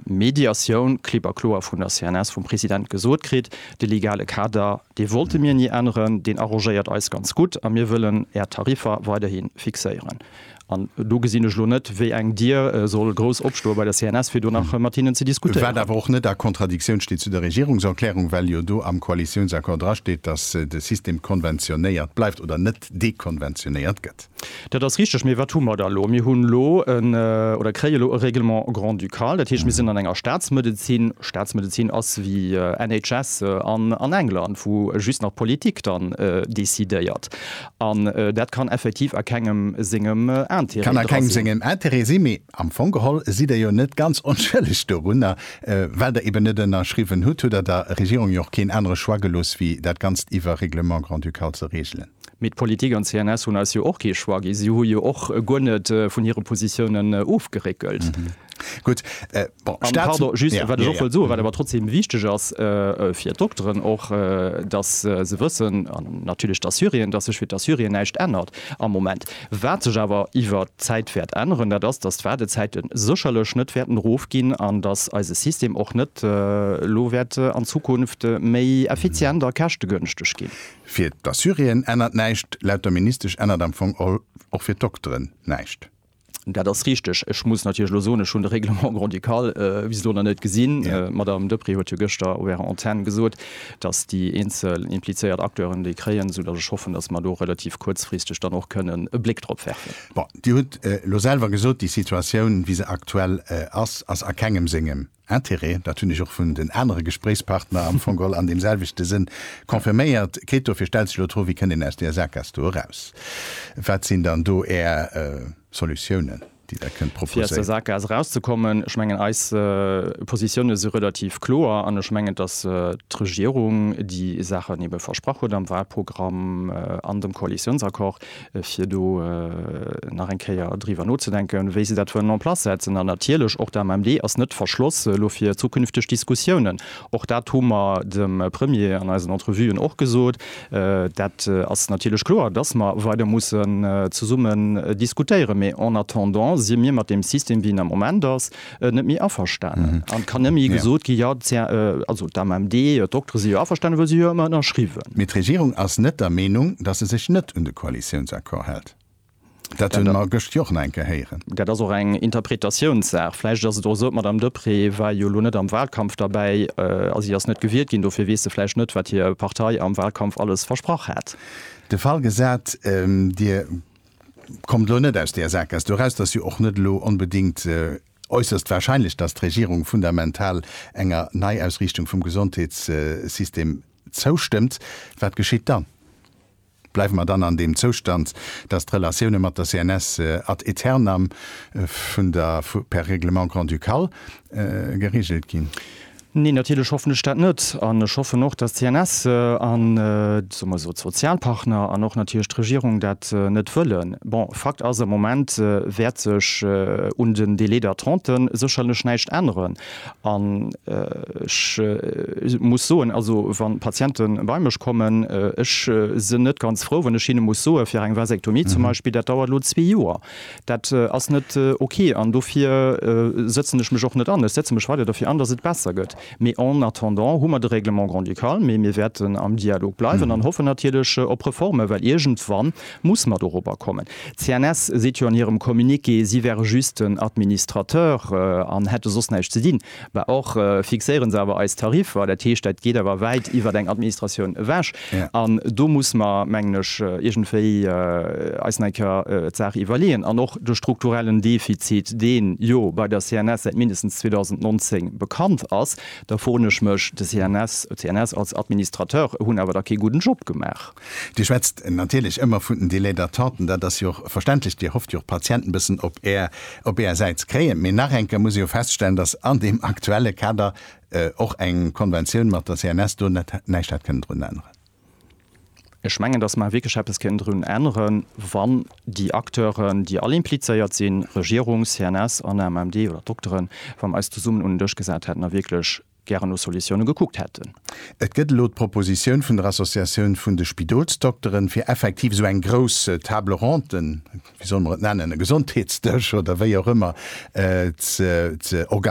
Mediatioun klipp a kloer vun der CNS, vum President gesot kritt, de legale Kader, dee wollte mir ni änneren, deen arrangéiert eis ganz gutt a mir wëllen Är Tariffer weiderhi fixéieren. An do gesinn ech elo net, wéi eng Dier soll grouss opstoe bei der CNS, fir do nach mat hinnen ze diskutéieren. Wat awer och net a Kontradiktioun steet zu der Regierungserklärung, well jo do am Koalitiounsaccord drasteet, datt de System konventionéiert bleift oder net Land dekonventionéiert gëtt. Dat ass richteg. Mee wat hu mer da elo? Mir hunn elo en, oder kréie elo e Règlement grand-ducal. Dat heescht, mir sinn an enger Staatsmedezin. Staatsmedezin ass wéi NHS an England, wou just nach d'Politik dann decidéiert. An dat kann effektiv a kengem sengem Intérêt dra sinn. Kann a kengem sengem Intérêt sinn. Mee Am Fong geholl sidd Der jo net ganz onschëlleg dorunner. Well Der eben net ënnerschriwwen hutt, hutt Der der Regierung jo och keen anere Choix gelooss wéi dat Ganzt iwwer Règlement grand-ducal ze reegelen. Mee d'Politik an d'CNS hunn eis jo och kee Choix gi. Si hu jo och guer net vun hire Positiounen ofgeréckelt. Gutt, bon, Staats. Pardon, just wat ech och wëll soen, wat awer trotzdeem wichteg ass fir d'Dokteren och, datt se wëssen, an natierlech d'Assuréen, datt sech fir d'Assuréen näischt ännert am Moment. Wat sech awer iwwer d'Zäit wäert änneren, dat ass, datt d'Waardezäite sécherlech net wäerten erofginn an datt eise System och net elo wäert an Zukunft méi effizient a käschtegënschteg ginn. Fir d'Assuréen ännert näischt. Laut der Ministesch ännert am Fong och fir d'Dokteren näischt. Dat ass richteg. Ech muss natierlech elo soen, ech hunn de Règlement grand-ducal bis elo nach net gesinn. D'Madame Deprez huet jo gëschter op Ärer Antenn gesot, dass déi eenzel implizéiert Acteuren déi kréien, esoudass ech hoffen, dass mer do relativ kuerzfristeg dann och kënnen e Bléck drop werfen. Bon, Dir hutt elo selwer gesot, déi Situatioun, wéi se aktuell ass, ass a kengem sengem Interêt. Dat hunn ech och vun den anere Gespréichspartner am Fong all an deemselwechte Sënn confirméiert kritt. Dofir stellt sech elo d'Fro, Wéi kënnt een aus där Saakas do eraus? Wat sinn dann do Är Solutiounen? déi dat kënnt proposéieren. Fir aus der Sackgaass erauszekommen, ech mengen, eis Positiounen si relativ kloer an ech mengen, dass d'Regierung déi Saachen ebe versprach huet am Wahlprogramm an dem Koalitionsaccord, fir do nach eng Kéier driwwer nozedenken, wéi se dat wëllen en place setzen. An natierlech och d'AMMD ass net verschloss elo fir zukünfteg Diskussiounen. Och dat hu mer dem Premier an eisen Entrevuen och gesot. Dat ass natierlech kloer, dass mer weider mussen zesummen diskutéieren. Mee en attendant si mir mat deem System, wéi en am Moment ass, net méi averstanen. An et kann net méi gesot ginn, Jo, d'AMMD, d'Doktere si jo averstanen, well si hu jo ëmmer ënnerschriwwen. Mee d'Regierung ass net der Meenung, dass se sech net un de Koalitiounsaccord hält. Dat hunn mer gëscht jo och nach eng Kéier héieren. Dat ass och eng Interpretatiounssaach. Vläicht ass et och esou, d'Madame Deprez war jo elo net am Wahlkampf derbäi a si ass net gewielt ginn, dofir weess se vläicht net, wat hir Partei am Wahlkampf alles versprach hat. De Fall gesat, Dir kommt elo net aus där Sakesk doraus, et ass jo och net elo onbedéngt äusserst wahrscheinlech, datt d'Regierung fundamental enger Neiausriichtung vum Gesondheetssystem zoustëmmt. Wat geschitt dann? Bleiwe mer dann an deem Zoustand, dass d'Relatioune mat der CNS ad aeternam vun der per Règlement grand-ducal geregelt ginn? Neen, natierlech hoffen ech dat net. An ech hoffen och, dass d'CNS an, soe mer esou, d'Sozialpartner an och natierlech d'Regierung dat net wëllen. Bon, Fakt ass, am Moment wäert sech un den Délais d'attenten sécherlech näischt änneren. An ech muss soen, also wa Patiente bei mech kommen, ech sinn net ganz frou, wann ech hinne muss soe fir eng Vasektomie zum Beispill, dat dauert elo zwee Joer. Dat ass net ok. An dofir sëtzen ech mech och net an. Ech setze mech weider derfir an, datt et besser gëtt. Mee en attendant hu mer de Règlement grand-ducal. Mee mir wäerten am Dialog bleiwen an hoffen natierlech op Reforme, well iergendwann Muss mat erober kommen. D'CNS seet jo an hirem Communiqué, si wäre just den Administrateur an hätte soss näischt ze dinn. Bah, och fixéiere se awer eis Tariffer. Dat heescht, dat geet awer wäit iwwert eng Administratioun ewech. An do muss mer, mengen ech, iergendwéi eis nach eng Kéier d'Saach iwwerleeën. An och de strukturellen Defizit, dee jo bei der CNS säit mindestens 2019 bekannt ass, da froen ech mech, de CNS, d'CNS als Administrateur hunn awer da kee gudden Job gemaach. Dir schwätzt natierlech ëmmer vun den Délais d'attente, an dat ass jo och verständlech, Dir hofft jo och d'Patienten e bëssen op Är, op Är Säit ze kréien. Mee nach eng Kéier muss ee jo feststellen, datt an deem aktuelle Kader och eng Konventioun mat der CNS do net näischt hätt kënnen drun änneren. Ech mengen, datt mer wierklech eppes kéinten drun änneren, wann déi Acteuren, déi all implizéiert sinn, Regierung, CNS an AMMD oder d'Dokteren, wa mer eis zesummen un en Dësch gesat hätten a wierklech gären no Solutioune gekuckt hätten. Et gëtt elo d'Propositioun vun der Associatioun vun de Spidolsdokteren, fir effektiv esou eng grouss Table ronde, wéi solle mer et nennen, e Gesondheetsdësch oder wéi och ëmmer, ze organiséieren,